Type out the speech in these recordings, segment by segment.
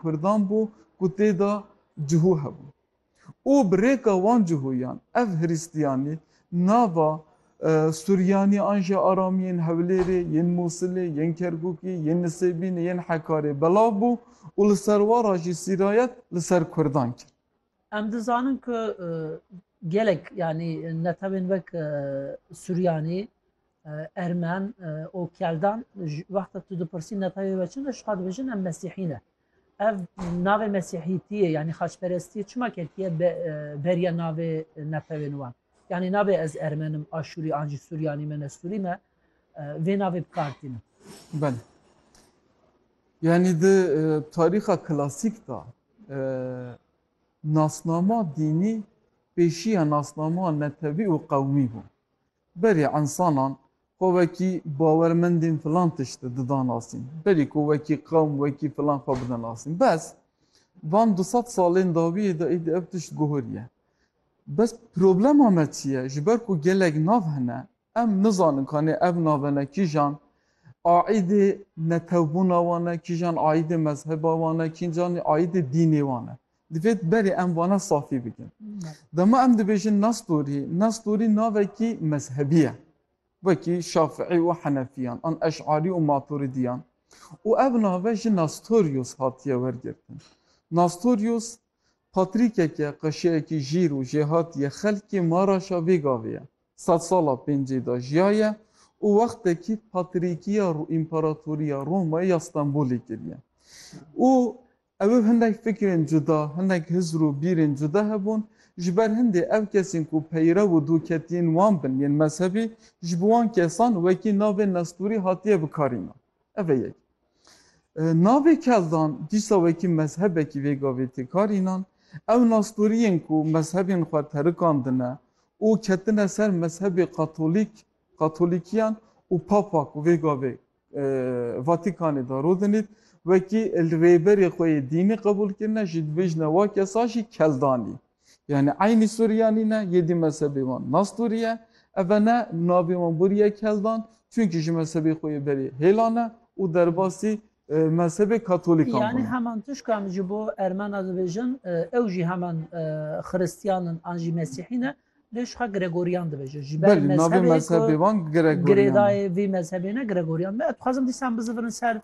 Kurdan bû ku tê de cihû hebû û bi rêka wan cihûyan ev hirîstiyanî nava Suryanî an jî Aramî yên Hewlêrê, yên Mûsilê, yên Kerkûkî, yên Nisêbînê, yên Hekarê belav bû û li serwara jî sîrayet li ser Kurdan kir. Em dizanin ku gelek yanî netewên wek Suryanî, Ermen û Keldan wexta tu dipirsî netewê we çi ne ji xwe dibêjin em Mesîhî ne. Ev navê Mesîhîtiyê yanî xaçperestiyê çima ketiye beriya navê netewên wan. Yanî nabê ez Ermen im, Aşûrî an jî Suryanî me ne Sûrî me vê navê bikar tînin. Belê. Yanî di tarîxa klasîk de Nasnama dînî pêşiya nasnama netewî û qewmî bû. Berî însanan xwe wekî bawermendên filan tişt didanasîn, berî ku wekî qewm, wekî filan xwe bidanasîn. Bes van du sed salên dawiyê de êdî ev tişt guheriye. Bes problema me çi ye? Ji ber ku gelek nav hene, Em nizanin kanê ev nave ne kîjan aîdê netewbûna wan e, kîjan aîdê mezheba wan e, kîjan aîdê dînê wan e. Divêt berê em vane safî bikin. Dema em dibêjin Nestorî, Nestorî navekî mezhebî ye. Wekî Şafiî û Henefîyan an Eş'arî û Maturidîyan. Û ev nave ji Nastorius hatiye wergirtin. Nastorius Patrîkeke qeşeyekî jîr û jêhat yê xelkê Maraşa vê gavê ye. Sed sala pêncê de jiyaye û wextekî patrîkiya Împaratoriya Romayê ya Stenbolê kiriye û ew hindek fikrên cuda, hindek hizr û bîrên cuda hebûn. Ji ber hindê ew kesên ku peyrev û doketiyên wan bin yên mezhebî, ji bo wan kesan wekî navên Nestorî hatiye bikarînan. Ev e yek. Navê Keldan dîsa wekî mezhebekî vê gavê tê kar înan. Ew nasdoriyên ku mezhebên xwe terikandine û ketine ser mezhebê Katolîk, Katolîkiyan û Papa ku vê gavê Vatîkanê de rodinît, wekî rêberê xwe yê dînî qebûl kirine, jî dibêjine wa kesa jî Keldanî. Yanî eynî Suryanî ne, yedî mezhebê wan Nastûrî ye. Ev ne navê wan bûrî ye Keldan, çunkî ji mezhebê xwe yê berê hêla ne û derbasî mezhebê Katolîkan bûne. Yanî heman tişk em ji bo Ermen a dibêjin, ew jî heman Xiristîyan in an jî Mesîhî ne, lê ji xwe Gregorîyan dibêjin. Ji ber mezhebê wan girêdayê ye. Vî mezhebê ne Gregorîyan. Me dixwazin dîsan bizivirin ser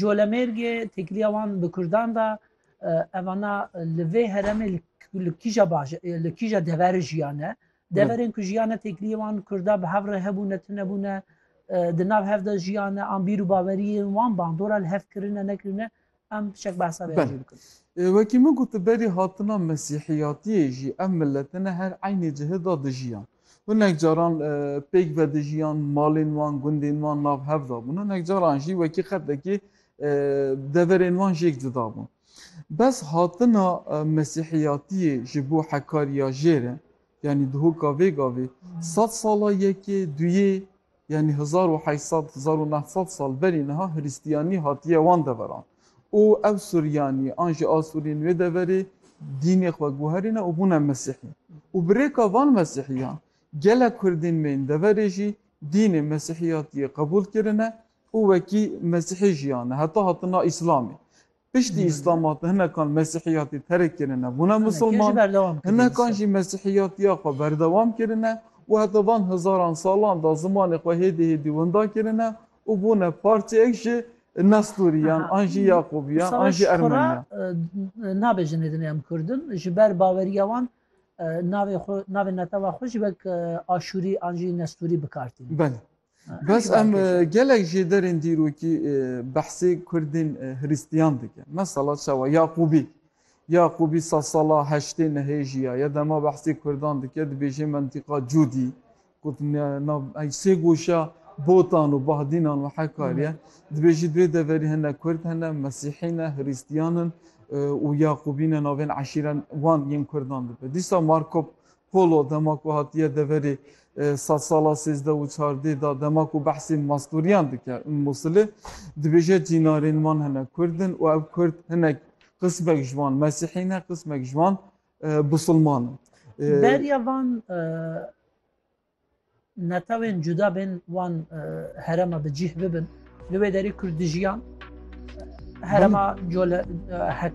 Colemêrgê, têkilîya wan bi Kurdan de, Evana li vê heremê li kîja baş li kîja dever jiyane. Deverên ku jiyane têkiliyê wan Kurda bi hev re hebûne, tunebûne, di nav hev de jiyane, an bîr û baweriyên wan bandora li hev kirine nekirine em şek behsa vê jî bikin. Wekî min got berî hatina mesîhiyatiyê jî ev milete ne her eynî cihê da dijiyan. Hinek caran pêk vedijiyan, malên wan, gundên wan nav hev dabûn. Hinek caran jî wekî qedekê Deverên wan jî yek cuda bûn. Bes hatina mesîhiyatiyê ji bo hekariya jêr e, yanî dihoka vê gavê sed sala yekê, duyê, yanî hezar û heyt sed, hezar û neh sed sal berî niha hiristiyanî hatiye wan deveran û ev Suryanî an jî Asurîn wê deverê dînê xwe guherîne û bûne mesîhî û bi rêka van mesîhîyan gelek kurdên me yên deverê jî dînê mesîhiyatiyê qebûl kirine û wekî Mesîhî jiyane heta hatina Îslamê. Piştî Îslama de hinekan Mesîhiyatî terk kirine bûne Misilman, hinekan jî Mesîhiyatiya xwe berdewam kirine û heta van hezaran salan de zimanê xwe hêdî hêdî winda kirine û bûne parçeyek ji Nestûriyan an jî Yaqubiyan an jî Ermeniyan. Nabêjin hêdin em Kurd in, ji ber baweriya wan navê xwe, navê netewa xwe jî wek Aşûrî an jî Nestûrî bikar tînin. Belê. Bes em gelek jê derên dîrokî behsê Kurdên Hrîstiyan dike. Mesela çawa Yaqûbî. Yaqûbî sa sala heştê nehê jiya ye dema behsê Kurdan dike dibêje mentîqa Cûdî ku sê goşa Botan û Bahdînan û Hekar ye. Dibêje di wê deverî hene Kurd hene, Mesîhî ne, Hrîstiyan in û Yaqûbî ne navên eşîren wan yên Kurdan dibe. Dîsa Markop Holo dema ku hatiye deverê sed sala sêzdeh û çardê da dema ku behsê mastûriyan dike û Mûsilê dibêje cînarên wan hinek kurd in û ev kurd hinek qismek ji wan mesîhî ne qismek ji wan bisilman in. Beriya van netewên cuda bên wan herema bi cîh bibin li wê derê kurd dijiyan herema cole heka